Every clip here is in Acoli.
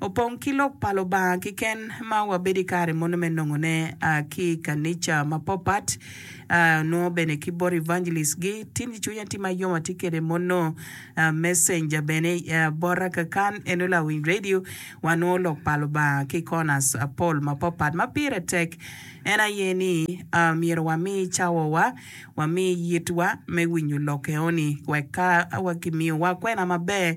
Opong ki Lok pa Lubanga kiken ma wabedo i kare mono me nongone ki i kanica mapopat, onongo bene ki bot evangelist-gi. Tin ki cwinya tye ma yom atye kede mono messenger bene bota kakan en onongo lawiny radio. Wanongo Lok pa Lubanga ki i corners mapol mapopat. Ma pire tek en aye ni myero wami cawawa, wami yitwa me winyo lok eno-ni wek ka kimiyowa kwena maber,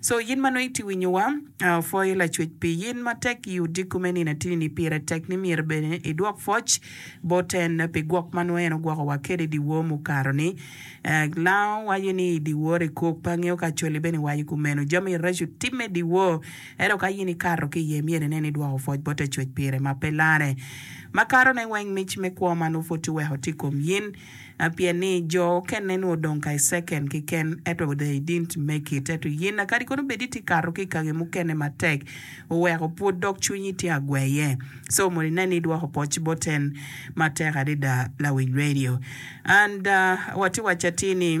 So in ma nongo itye winyowa, apwoyo Lacwec pi in matek i odiko me nino atini-ni. Pire tek ni myero bene idwok pwoc bot en pi gwok ma nongo en ogwokowa kwede i dyewor mukato-ni. Lango waco ni i dyewor ekok, pe angeyo ka Acholi bene waco kumeno. Jami reco timme i dyewor, ento ka in ikato ki iye, myero inen ni idwoko pwoc bot Lacwec pire ma pe larre. Makatone weng mic me kwo ma nongo pud tye wek otim i kom in. a Pien ni jo okenne nwo dong ka i second kiken eto they didn't make it eto yina kadi kono bed iti kato ki ikangi mukene matek oweko pud dok cwinyi tye agweye so mono inen ni idwoko poc bot en matek adida lawiny radio and watye wacatir ni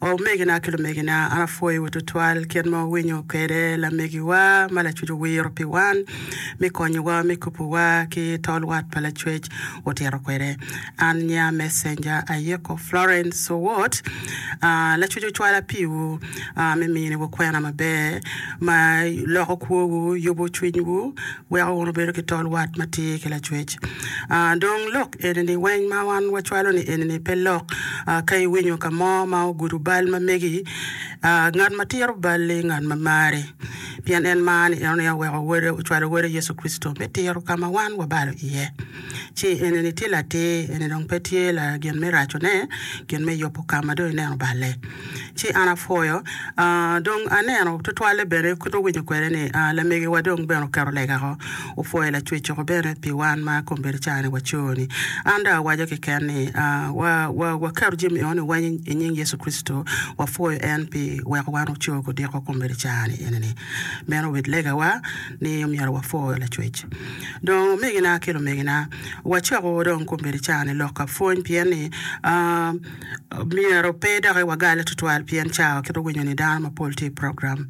Omegina ki lumegina, an apwoyowu tutwal kit ma wuwinyo kwede lamegiwa ma Lacwec owiro pi wan me konyowa me kubowa ki tol wat pa Lacwec otito kwede. An nya mecenja ayiko Florence Owot. Lacwec ocwala piwu me miniwu kwena maber ma loko kwowu, yubo cwinywu, Weko wunu bedo ki tol wat ma tye ki lacwec. Ah, dong lok eni ni, weny ma wan wacwalo ni eni ni pe lok. Ah, ka iwinyo ka mo ma ogudo bal ma megi, ah, ngat ma tiro bal-li ngat ma mari, pien en mar ni, enoni oweko Wode, ocwalo Wode Yecu Kricito me tiro ka ma wan wabalo iye. ci enini tye latir, eni dong pe tye gin me racone, gin me yubo ka ma dong ineno balle. Ci an apwoyo, aa, dong aneno tutwalle bene, kit ma awinyo kwede ni, aa, lamegiwa dong bene oketo lega woko, opwoyo Lacwecco bene pi wan ma kombeddi cani waco-ni. An dong awaco keken ni, aa, wa, wa, waketo jami eno-ni weny i nying Yecu Kricito, wapwoyo en pi weko wan oco ki odiko kombeddi cani enini. Meno obed legawa. ni omyero wapwo Lacwec. Dong omegina ki lumegina, wacoko dong kombeddi caa-ni lok ka pwony pien ni myero pe doki wagale tutwal pien caa wa kit winyo ni dano mapol tye i program.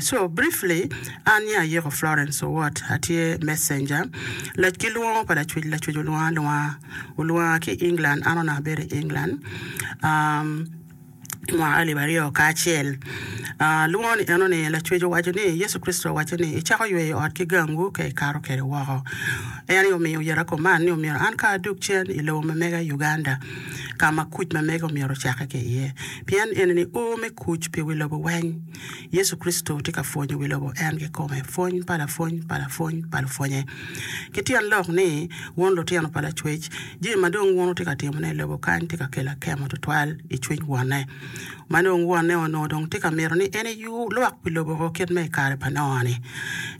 So briefly an ni ayiko Florence Owot atye messenger ki lwongo pa Lacwec, Lacwec olwongo alwonga, olwonga ki England an onongo abedo i England. I mwaka alip aryo kacel lungo ni enoni, Lacwec owaco ni, Yecu Kricito owaco ni, Icako yweyo ot ki gangwu ka ikato kwede woko. En aye omiyo oyero akuman ni omyero an kong adog cen i lobo ma mega Uganda, ka ma kuc ma mega omyero ocakke ki iye, pien enini ur me kuc pi wi lobo weng. Yecu Kricito tye ka pwonyo wi lobo en kikome, pwony pa lapwony pa lapwony pa lupwonye. Ki tyen lok ni, wun lutino pa Lacwec, jami ma dong wun wutye ka timone i lobo kany tye ka kelo akemo tutwal i cwiny Wonne. Ma dong Wonne onongo dong tye ka mito ni en eyub lwak pi lobo o kit ma i kare pa Noa-ni.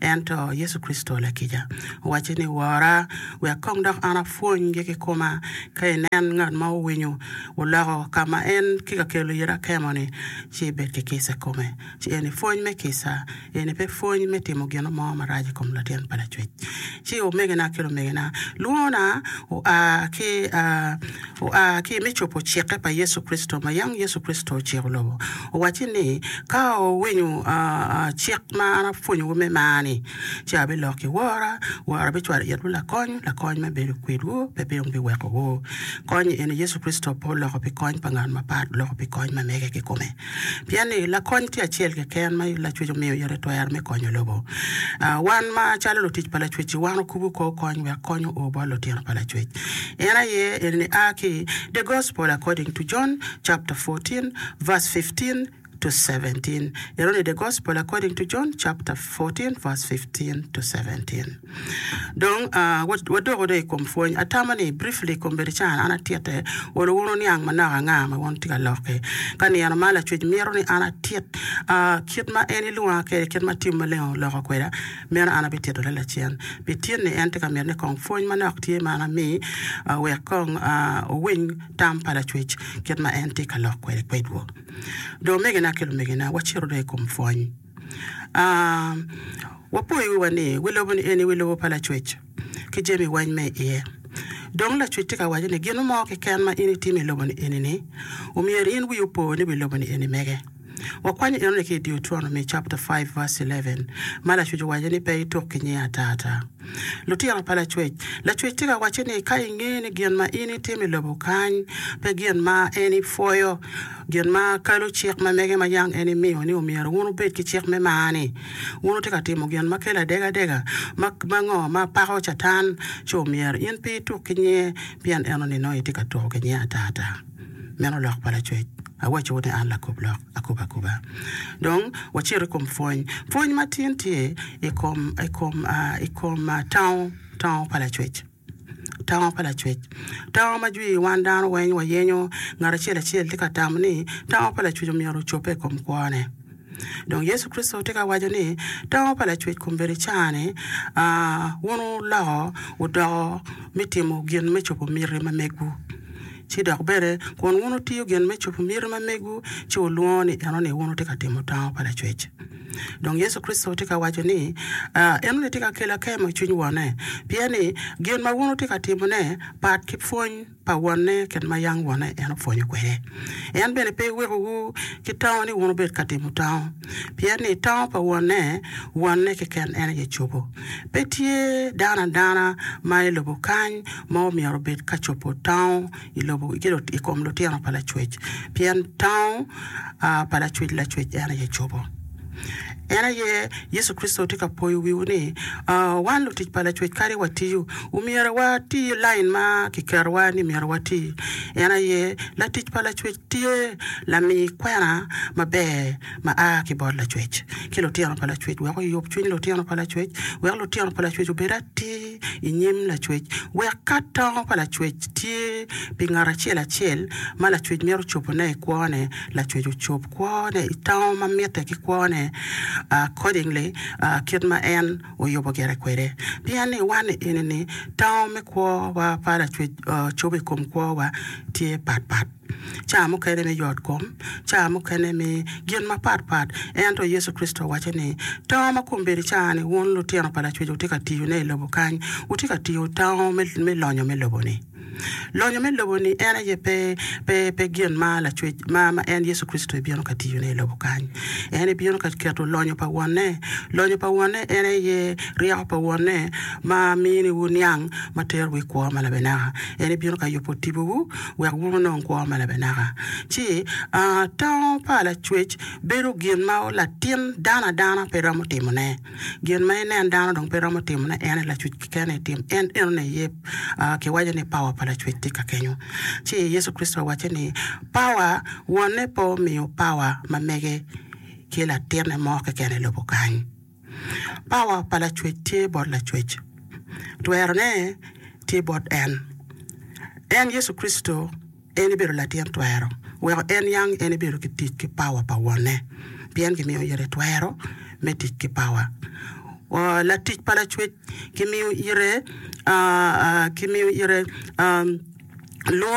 Ento Yecu Kricito lakica owacce ni, Wora, wek kong dok an apwonygi kikoma. Ka inen ngat ma owinyo, oloko ka ma en tye ka kelo iye akemo-ni, ci ibed ki kica i kome, ci eni pwony me kica, eni pe pwony me timo gin mo marac i kom latin pa lacwec. Ci omegina ki lumegina, lwongona oa ki oa ki me cobo cikke pa Yecu Kricito ma yam Yecu Kricito ociko lobo, owacci ni, Ka wuwinyo cik ma an apwonyowu me mar-ni, ci abiloko i wora, wora bicwalo itwu lakony, lakony ma bedo kwedwu, pe bino biwekowu. Kony eni Yecu Kricito pe oloko pi kony pa ngat mapat, oloko pi kony ma mege kikome. Pien ni, Lakony tye acel keken ma Lacwec omiyo yot i twero me konyo lobo. Wan ma calo lutic pa Lacwec-ci, wan okubu kor kony wek kony oo bot lutino pa Lacwec. En aye eni ni a ki i The Gospel According to John chapter fourteen verse fifteen, 14-17, Irony i The Gospel According to John chapter 14 verse 15-17. Dong, uh, wadoko dong i kom pwony. Atamo ni, briefly, kombedicana an atitte, olo wunu niang manok anga ma wun tye ka lokke. Ka nino ma Lacwec mito ni an atit, uh, kit ma en ilwonga kwede, kit ma Tim Maleng oloko kweda, meno an abitito lel acen. Pi tin ni en tye ka mito ni kong pwony manok tye ma an ami, uh, wek kong, uh, wuwiny tam pa Lacwec kit ma en tye ka lok kwede kwedwu. Dong omegina ki lumegina, wacito dong i kom pwony. Wapo i wiwa ni, wi lobo ni eni wi lobo pa Lacwec, ki jami weng me i iye. Dong Lacwec tye ka waco ni gin mo keken ma in itimo i lobo ni eni-ni, omyero in wiyi opo ni wi lobo ni eni mege. Wakwanyo enoni ki i Deuteronomy chapter five verse eleven, ma Lacwec owaco ni pe ituk ki nyinga ata ata. Lutino pa Lacwec. Lacwec tye ka wacce ni ka ingeyo ni gin ma in itimo i lobo kany pe gin ma en ipwoyo, gin ma kalo cik ma mege ma yam en imiyo ni omyero wun wubed ki cik me mar-ni, wun wutye ka timo gin ma kelo adegadega ma ngo ma pako Catan, ci omyero in pe ituk ki nyinge, pien en onino itye ka tuko ki nyinge atata. Meno lok pa lacwec. Awacciwu ni an lakub lok akuba akuba. Dong wacit i kom pwony. Pwony matin tye i kom, i kom, i kom tango, tango pa lacwec. Tango pa lacwec. Tango ma jwi wan dano weng wayenyo. Ngat acel acel tye ka tamo ni tango pa lacwec omyero ocobbe i kom kwone. Dong Yecu Kricito tye ka waco ni tango pa lacwec kombeddi caa-ni, wun wuloko wudoko me timo gin me cobo miti ma megwu, ci dok bene kun wun wutiyo gin me cobo miti ma megwu, ci wulwongo ni enoni wun wutye ka timo tango pa lacwec. Dong Yecu Kricito tye ka waco ni enoni tye ka kelo akemo i cwiny Wonne, pien ni gin ma wun wutye ka timone pat ki pwony. pa wonne kit ma yam wonne en opwonyo kwede. En bene pe wekowu ki tango ni wun wubed ka timo tango, pien ni tango pa wonne, wonne keken en aye cobo. Pe tye dano adana ma i lobo kany ma omyero obed ka cobo tango i lobo i kom lutino pa Lacwec, pien tango pa Lacwec, Lacwec en aye cobo. En aye Yecu Kricito tye ka poyo wiwu ni, Wan lutic pa Lacwec kadi watiyo, omyero wati lain ma kiketowa ni myero wati. En aye latic pa Lacwec tye lami kwena maber ma a ki bot Lacwec ki lutino pa Lacwec wek oyub cwiny lutino pa Lacwec, wek lutino pa Lacwec obed atir i nyim Lacwec, wek ka tango pa Lacwec tye pi ngat acel acel ma Lacwec mito cobone i kwone, Lacwec ocob. kwone i tango ma mitte ki kwone accordingly kit ma en oyubo gire kwede. Pien ni wan i enini tango me kwowa pa Lacwec cobo i kom kwowa tye pat pat, ca mukene me yotkom, ca mukene me gin mapat pat. Ento Yecu Kricito owaco ni, Tango ma kombeddi ca ni wun lutino pa Lacwec wutye ka tiyone i lobo kany, wutye ka tiyo tango me lonyo me lobo-ni. Lonyo me lobo ni en aye pe pe pe gin ma lacwec ma ma en Yecu Kricito ebino ka tiyo ne ilobo kany. En ebino ka keto lonyo pa Wonne. Lonyo pa Wonne en aye ryeko pa Wonne ma mini wu niang ma tero wu i kwo ma labenaka. En ebino ka yubo tipo wu wek wu onong kwo ma labenaka. Ci aa, tango pa lacwec bedo gin ma latin dano adana pe romo timo ne. Gin ma inen dano dong pe romo timone, en aye Lacwec keken aye tim. En enoni aye kiwaco ni pawa pa Lacwec tye ka kenyo. Ci Yecu Kricito owacce ni, Pawa, Wonne pe omiyo pawa ma mege ki latinne mo keken i lobo kany. Pawa pa Lacwec tye bot Lacwec. Twerone tye bot En. En Yecu Kricito. En ebedo latin twero weko en niang en ebedo ki tic ki pawa pa Wonne, pien gimiyo ite twero me tic ki pawa. Latic pa Lacwec gimiyo ite lwongo.